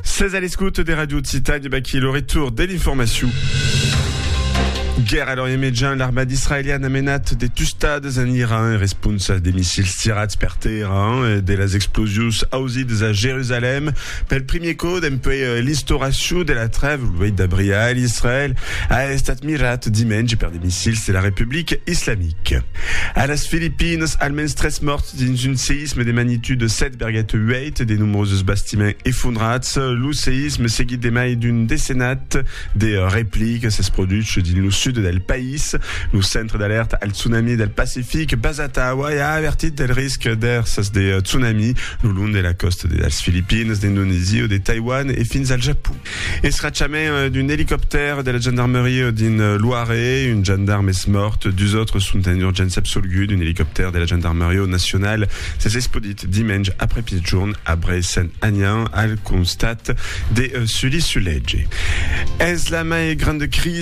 Sètz a l'escòute de Radio Occitània, e baquí lo retour de l'informacion. Guèrra a l'Orient Mejan, l'armada israeliana a menat de tustades en Iran en responsa de missils tirats per tèrra e de las explosions ausidas a Jerusalèm. Pel primier còp dempuèi l'instauracion de la trèva lo 8 d'abril a Israèl a estat mirat dimenge per de missils de la Republica Islamica. A las Filipinas, almens tres mòrts dins un seïsme de magnitude 7,8. Suite de nombroses bastiments efondrats, lo seïsme seguit de mai d'un decenat de replic s'es produch dins lo sud del país. Lo Centre d'Alèrta al Tsunami del Pacific basat a Hawaii a avertit del risc d'èrsas de tsunami lo long de la còsta de las Filipines, d'Indonesia, de Taiwan e fins al Japon. Escrachament d'un elicoptèr de la gendarmeria dins Loiret, un gendarm es mòrt, dus autres sont en urgéncia absolgut, un elicoptèr de la gendarmeria nacional s'es esplodit dimenge aprèpitjorn a Brès Sant Anian al costat de Sully-sur-Lège. Es la mai granda crisi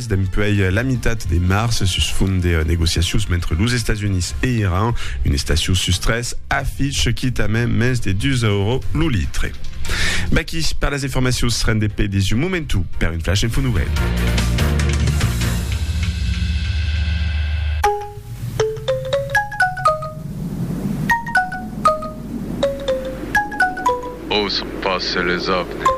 Dempuèi la mitat de març, sus font de negociacions mentre los Estats Units e Iran, un estacion sus tres afiche quitament mens de 2 euros lo litre. Vaqui per las informacions ren de pè des un momentu per un flash info novèl. Ò son passe les avni.